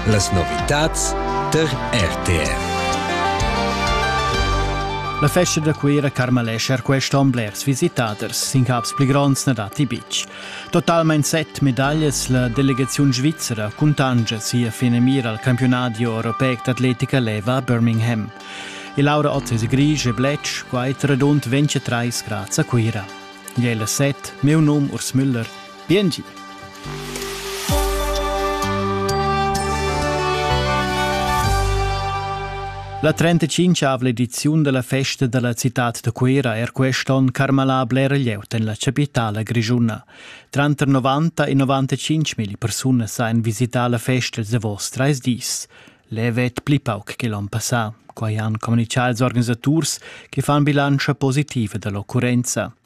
Las novitads tar RTR. La festa da Cuira Carmalescher quest'on blers visitaders, sin caps pli gronds na datti betg. Totalmain set medaglias la delegaziun svizzera cuntanscha sia finamira al campiunadi europeic d'atletica leva a Birmingham. Il Laura Ottese Grisch e Bletsch, quai radund 23 grads a Cuira. Gli è la set, meu num Urs Müller, Biengi. La 35 ediziun della festa della città de Cuira er quest'on carmalà bler glieut en la capitala grigiuna. Tranter 90 e 95 mil persone sain visità la festa de vos treis dis. Levet pli pauc che l'on passà, quai han comunicà ils organisaturs che fan bilancia positiva dell'occurrenza.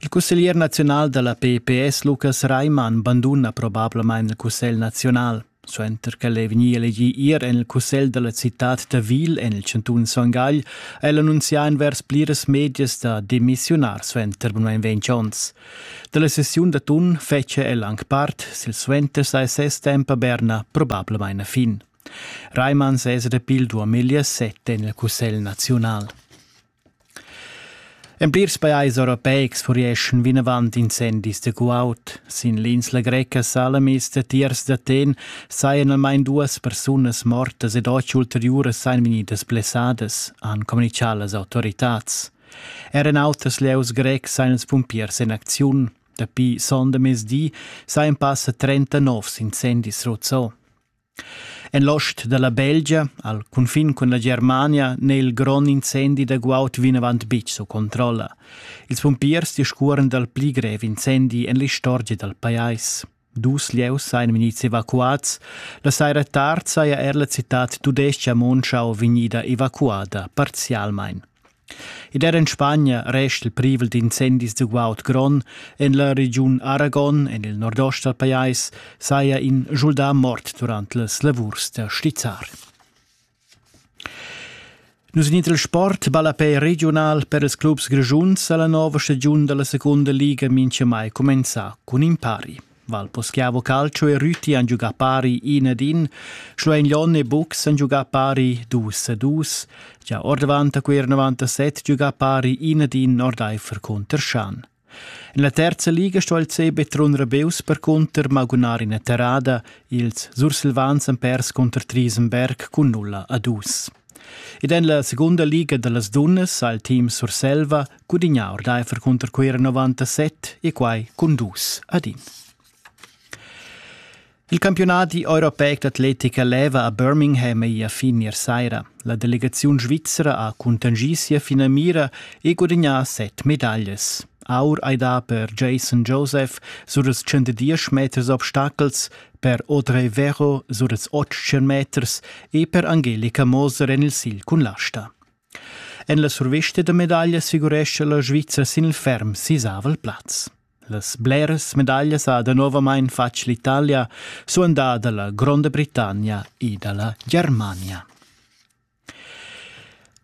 Il cusseglier naziunal da la PPS Lukas Reimann banduna probablamain il cussegl naziunal. Suenter ch'el è vegnì elegì ier en il cussegl da la citad Tavil en il chantun Son Gagl, ha el annunzià envers pliras medias da demissiunar suenter bunmain ventg onns. Da la sessiun d'atun fetschia el anc part, silsuenter sa ses temp a Berna probablamain a fin. Reimann sesa da Pildu a meglier set en il cussegl naziunal. En plirs pajais europeics furieschan vinavant incendis da guaud. Sin l'insla greca Salamis datiers d'Aten sajan almain duas persunas mortas ed otg ulteriuras sajan vegnidas blessadas, han communitgà las autoritads. Er en auters lieus grecs sajan ils pumpiers en acziun. Dapi sonda mezdi sajan passa 30 novs incendis ruzzò. En l'ost dalla Belgia, al cunfin cun la Germania, n'è il grond incendi da guaud vinavant betg sco controlla. Ils pumpiers discuoran dal pli grev incendi en l'istorgia dal pajais. Dus lieus sajan vegnids evacuads. La saira tard saja er la citad tudestga Monschau vegnida evacuada parzialmain. Id era in Spagna rest il privel d'incendis da guaud grond en la regiun Aragon en il nordost dal pajais saja in schuldà mort durant las lavurs da stizzar. Nus in il sport ballapè regional per ils clubs grischuns a la nova stagiun da la secunda liga mincha mai cumenzà cun impari. Val poschiavo calcio e rüti han giugà pari in ed in, Schluein Lon e Bux han giugà pari dus e dus, gia ordavant a quer 97 giugà pari in ed in ordaifer cunter Schan. En la terza liga sto il CB Trun Rebeus percunter magunar in terrada, ils Sursilvans han pers cunter Triesenberg cun nulla a dus. Ed en la segunda liga da las dunnas ha il team Surselva Gudignar ordaifer cunter quei era 97 e quai cun dus ad in. Il campiunadi europeic d'atletica leva a Birmingham ei a fin ier saira. La delegaziun svizzera ha contingì sia finamira e gudignà set medaglias. Aur ei da per Jason Joseph sur els 110 meters obstacels, per Audrey Vero sur els 800 meters e per Angelika Moser en il sigl cun l'asta. En la survista da medaglia assicurescha la Svizra sin il ferm sisavel plaz. Las bleras medaglias ha danovamain fatg l'Italia, suandà da la Gronda Britannia e da la Germania.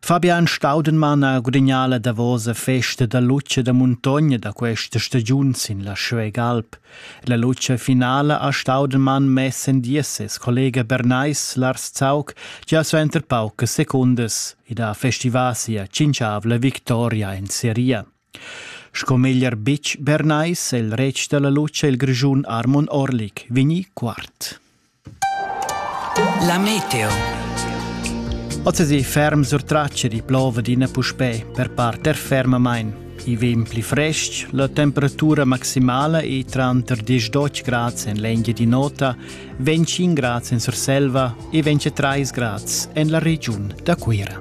Fabian Staudenmann ha gudagnà la davosa festa da luce da muntogna da questa stagiun sin la Schwegalp. La lutscha finala ha Staudelmann mess en dies ses collega Bernais Lars Zaug gia suenter paucas secundas ed ha festivà sia tschintschavla victoria en seria. Sco meglier bitg Bernais è il retg da la lutscha il Grischun Armon Orlik vegnì quart. La meteo. Ozzasi ferm sur tracce di plova d'ina puspè per parter fermamain. I vegn pli frestg, la temperatura maximala è tranter 10 grads en l'Engia di Nota, 25 grads en Surselva e 23 grads en la regiun da Cuira.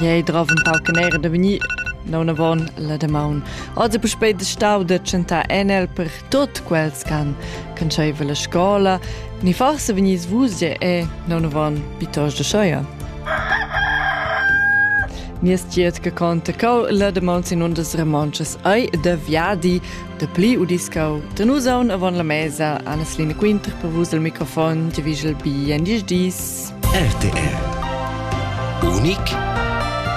Jei drov un pau canera da vegnir, non avon la damaun. Oz è puspei de stau de tschentar enel per tot quels can canscheva la scola, ni forse vegnis vus je e non avon pitos de schoia. Nies tiet che conta cau la damaun sin undas remonches ai de viadi Dapli udiscau da nus aun avon la mesa Anneslina Quinter per vus al microfon che vigel bi en diesch dis. RTR. Unic